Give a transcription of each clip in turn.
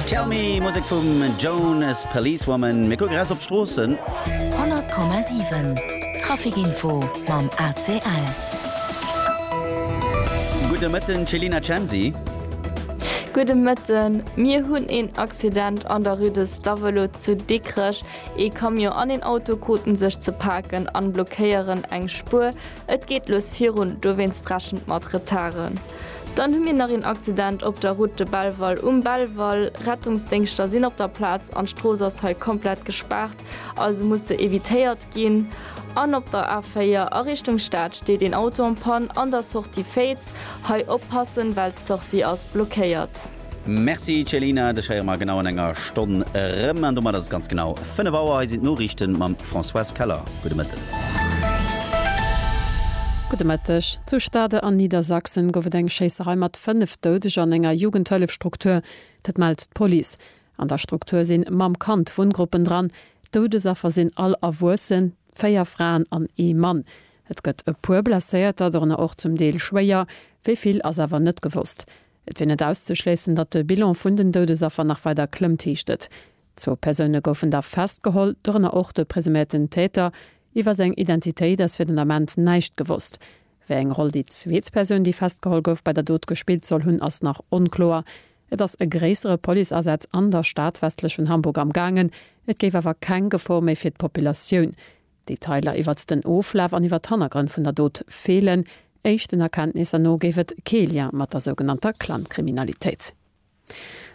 Tell Me, Musek vum Jonas, Policewoman. Mir kucke raus op d'Stroossen. 100,7 Traficinfo mam ACL. Gudde Mëtten, Celina Censi. Gudde Mëtten. Mir hunn een Accident an der Rue de Stavelot zu Dikrech. Ee Camion an een Auto kruten sech ze paken an blockéieren eng Spuer. Et geet lues virun, dowéinst rechent mat Retarden. Dann hu mir nach een Accident op der Route de Belval um Belval. Rettungsdéngschter sinn op der Plaz an d'Strooss ass hei komplett gespaart, also muss se evitéiert ginn. An op der A4 a Richtung Stad steet een Auto en panne an der Sortie Féiz. Hei oppassen, well d'Sortie ass blockéiert. Merci Céline, dech héiere mer genau an enger Stonn erëm an domat ass et ganz genau 5 Auer. Hei sinn d'Noriichten mam Françoise Keller. Gudde Mëtten. Gudde Mëtteg. Zu Stade an Niedersachsen gouf et eng Schéisserei mat 5 Doudeger an enger Jugendhëllefstruktur. Dat mellt d'Police. An der Struktur sinn Mamm, Kand, Wunngruppen dran. D'Doudesaffer sinn all Erwuessen, 4 Fraen an ee Mann. Et gëtt e puer Blesséierter, dorënner och zum Deel schwéier. Wéi vill ass awer net gewosst. Et wier net auszeschléissen, datt de Bilan vun den Doudesaffer nach weider klëmmt, heescht et. Zwou Persoune goufen da festgeholl, dorënner och de presuméierten Täter. Iwwer seng Identitéit ass fir den Ament näischt gewosst. Wéi eng Roll déi zweet Persoun, déi festgeholl gouf, bei der Dot gespillt soll hunn, ass nach onkloer. Et ass e gréissere Policeasaz an der Stad westlech vun Hamburg amgaangen, et géif awer keng Gefor méi fir d'Populatioun Detailer iwwert den Oflaf an iwwert d'Hannergrënn vun der Dot feelen. Éischten Erkenntnisser no géif et kee Lien mat der sougenannter Clankriminalitéit.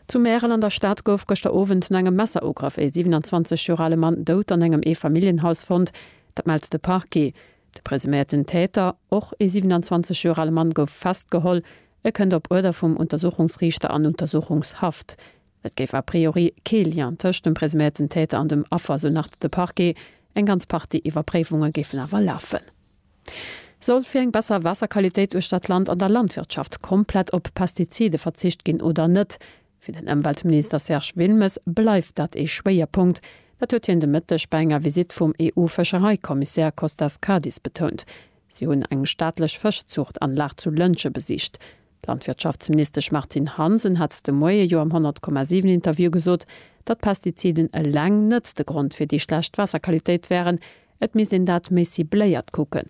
Zu Märel an der Stad gouf gëschter Owend no engem Messerugrëff ee 27 Joer ale Mann dout an engem Eefamilljenhaus fonnt. Dat mellt de Parquet. De presuméierten Täter, och ee 27 Joer ale Mann, gouf festgeholl. E kënnt op Uerder vum Untersuchungsriichter an Untersuchungshaft. Et géif a priori kee Lien tëscht dem presuméierten Täter an dem Affer, sou nach de Parquet. Eng ganz Partie Iwwerpréifunge géifen awer lafen. Soll fir eng besser Waasserqualitéit uechter d'Land an der Landwirtschaft komplett op Pestizide verzicht ginn oder net? Fir den Ëmweltminister Serge Wilmes bleift dat ee Schwéierpunkt. Dat huet hien de Mëtteg bei enger Visitt vum EU-Fëschereikommissär Kostas Kadis betount. Si hunn eng staatlech Fëschzuchtanlag zu Lëntge besicht. D'Landwirtschaftsministesch Martine Hansen hat de Moie jo am 100,7 Interview gesot, datt d'Pestiziden eleng net de Grond fir déi schlecht Waasserqualitéit wären, et misst een dat méi cibléiert kucken.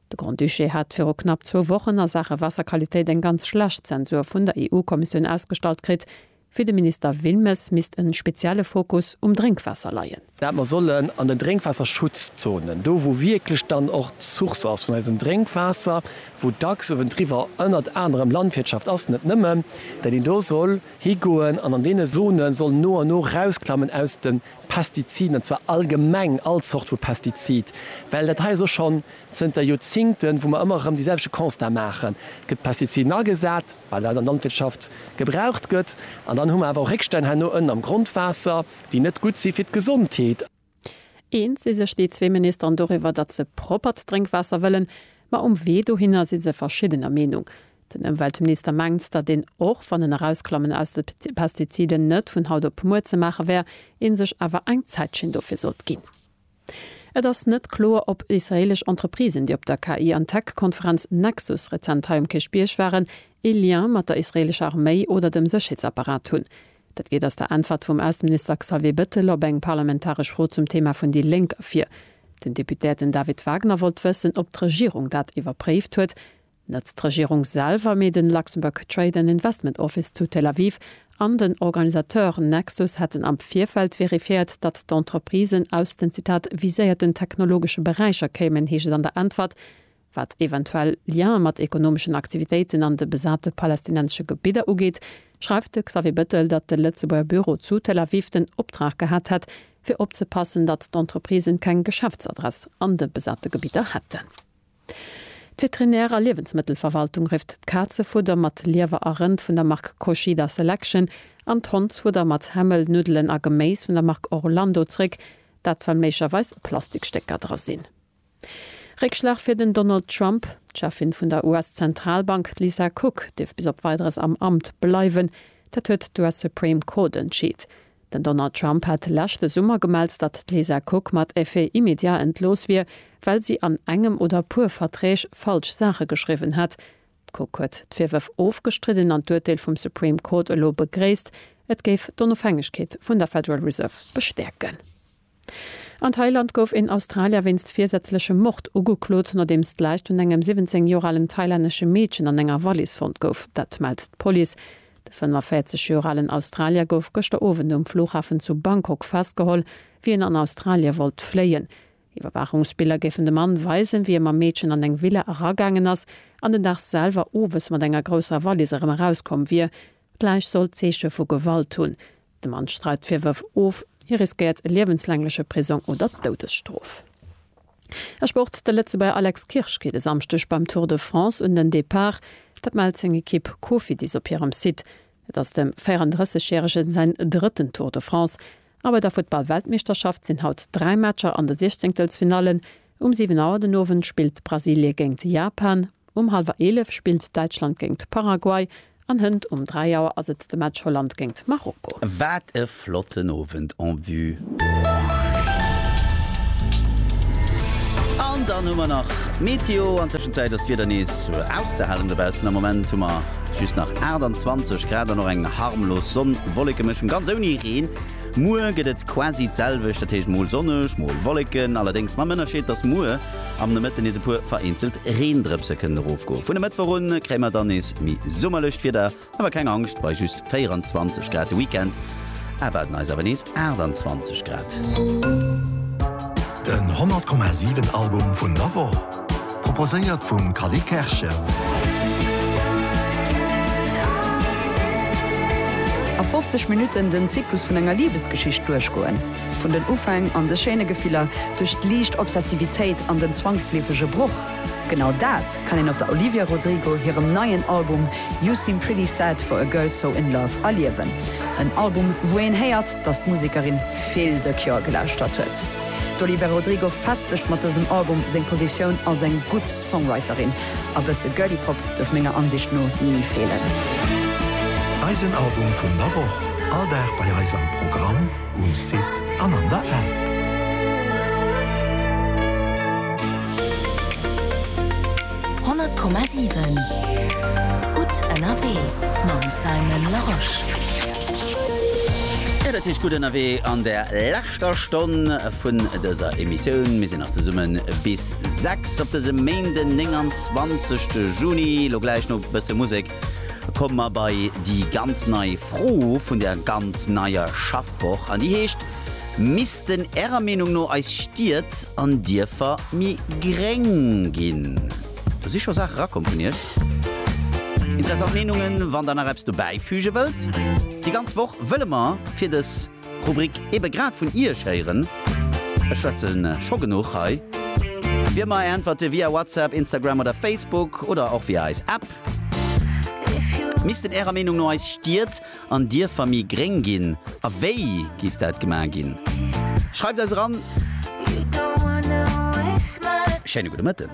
De Grand-Duché hat viru knapp zwou Wochen a Saache Waasserqualitéit eng ganz schlecht Zensur vun der EU-Kommissioun ausgestallt kritt, Fir de Minister Wilmes misst en spezielle Fokus um Drénkwaasser leien. Dat mer sollen an den Drénkwaasserschutzzonen, do wou wierklech dann och d'Source ass vun eisem Drénkwaasser, wou dacks uewendriwwer ënnert anerem Landwirtschaft ass, net nëmmen, dat een do soll higoen an an deene Zone soll no an no rausklammen aus de Pestiziden, an zwar allgemeng all Zort vu Pestizid. Well dat hei ass och schonn zënter Joerzingten, wou mer ëmmer erëm déi selwechte Constat maachen, et gëtt Pestiziden agesat, wat an der Landwirtschaft gebraucht gëtt, an dann hu mer awer och Réckstänn herno ënnen am Grondwaasser, déi net gutt si fir d'Gesondheet. Eens si sech déi zwee Ministeren doriwwer, datt se proppert Drénkwaasser wëllen, ma um Wee dohinner si se verschiddener Meenung. Den Ëmweltminister mengt, datt een, och wann en Erausklammen aus de Pestiziden net vun haut op muer ze maache wär, ee sech awer eng Zäitschinn dofir sollt ginn. Et ass net kloer, ob israeelesch Entreprisen, déi op der KI an Tech-Konferenz Nexus rezent hei um Kierchbierg waren, ee Lien mat der israeelescher Arméi oder dem Sécherheetsapparat hunn. Dat geet aus der Äntwert vum Ausseminister Xavier Bettel op eng parlamentaresch Fro zum Thema vun déi Lénk ervir. Den Deputéierten David Wagner wollt wëssen, ob d'Regierung dat iwwerpréift huet, Net d'Regierung selwer, mee den Luxembourg Trade and Investment Office zu Tel Aviv an den Organisateur Nexus hätten am Virfeld verifiéiert, datt d'Entreprisen aus den, Zitat, viséierten technologesche Beräicher kéimen, heescht et an der Äntwert. Wat eventuell Liene mat ekonomeschen Aktivitéiten an de besate palästinensesche Gebidder ugeet, schreift de Xavier Bettel, datt de Lëtzebuerger Büro zu Tel Aviv den Optrag gehat hätt, fir opzepassen, datt d'Entreprisen keng Geschäftsadress an de besate Gebidder hätten. D'Veterinär a Liewensmëttelverwaltung rifft d'Kazefudder mat Liewer a Rënd vun der Mark Koshida Selection an d'Hondsfudder mat Hämmel, Nuddelen a Geméis vun der Mark Orlando zréck, dat well méiglerweis Plastikstécker dra sinn. Réckschlag fir den Donald Trump, D'Cheffin vun der US-Zentralbank d'Lisa Cook dierf bis op Weideres am Amt bleiwen, dat huet d'US Supreme Court entscheet. Den Donald Trump hat leschte Summer gemellt, datt d'Lisa Cook mat effet immédiat entlooss wier, well si an engem oder puer Verträg falsch Saache geschriwwen hätt. D'Cook huet d'Virwërf ofgestridden an d'Urteel vum Supreme Court elo begréisst. Et géif d'Onofhängegkeet vun der Federal Reserve bestäerken. An Thailand gouf een Australier wéinst virsätzlechem Mord ugeklot, nodeems d'Läich vun engem 17 Joer alen thailännesche Meedchen an enger Wallis fonnt gouf. Dat mellt d'Police. De 45 Joer alen Australier gouf gëschter Owend um Flughafen zu Bangkok festgeholl, wéi en an Australie wollt fléien. Iwwerwaachungsbiller géifen de Mann weisen, wéi e mam Meedchen an eng Villa eragaangen ass an den Dag selwer owes mat enger grousser Wallis erëm erauskomm wier. D'Läich soll Zeeche vu Gewalt hunn. De Mann streit d'Virwërf of. Hie riskéiert liewenslängleche Prisong oder d'Doudesstrof. E Sport, De Lëtzebuerger Alex Kirsch geet e Samschdeg beim Tour de France un den Depart. Dat mellt seng Ekipp Cofidis op hirem Site. Et ass dem 34 järege säin drëtten Tour de France. A bei der Futtball-Weltmeeschterschaft sinn haut dräi Matcher an de Siechzéngtelsfinallen. Um 7 Auer den Owend spillt Brasilie géingt Japan, um hallwer 11 spillt Däitschland géingt Paraguay an hënt um 3 Auer ass et de Match Holland géingt Marokko. Wat e flotten Owend en vue! An dann hu mer nach d'Meteo. An Tëschenzäit ass d'Wieder nees auszehalen dobaussen. Am Moment hu mer just nach 28 Grad an och eng harmlos Sonn-Wollekemëschung, ganz ouni Reen. Muer gëtt et quasi d'selwecht, dat heescht mol sonneg, mol Wolleken, allerdéngs mam Ënnerscheed, dass muer am Nomëtte nees e puer vereenzelt Reendrëpse kënnen erofgoen. Vun e Mëttwoch un kréie mer dann nees méi summerlecht Wieder, awer keng Angscht, bei just 24 Grad de Weekend erwaarden eis awer nees 28 Grad. Den 100,7 Album vun der Woch, proposéiert vum Cally Kerschen. A 50 Minutten den Zyklus vun enger Libesgeschicht duerchgoen. Vun den Ufäng an de schéine Gefiller, duerch d'liicht Obsessivitéit an den zwangsleefege Broch. Genau dat kann een op der Olivia Rodrigo hirem neien Album You Seem Pretty Sad For A Girl So In Love erliewen. En Album, wou een héiert, dass d'Musekerin Vill de Cure gelauschtert huet. D'Olivera Rodrigo festegt mat dësem Album seng Positioun als eng gutt Songwriterin. A bësse Girly Pop duerf menger Ansicht no ni feelen. Eisen Album vun der Woch, all Dag bei eis am Programm, um Site an an der App. 100,7 Gutt ënnerwee mam Simon Larosche. Jo, dat heescht Gutt ënnerwee an der leschter Stonn vun dëser Emissioun. Mir sinn nach zesumme bis 6 op dësem Méinden 29 Juni. Lo gläich no e bësse Musek komme mer bei déi ganz nei Fro vun der ganz neier Schaffwoch an déi heescht, Missten Ärer Meenung no eis Stied an Dierfer méi gréng ginn? Do si scho Saache rakomm vun Iech. Interessant Meenungen, wann der nach eppes dobäi füge wëllt. Déi ganz Woch wëlle mer fir dës Rubrik ebe grad vun Iech héieren. Ech schwätze scho genuch hei. Wier mer äntwerte via WhatsApp, Instagram oder Facebook oder och via eis App. Missten Ärer Meenung no eis Stied An Dierfer méi gréng ginn? A wéi giff dat gemaach ginn? Schreift eis eran! Schéine gudde Mëtten.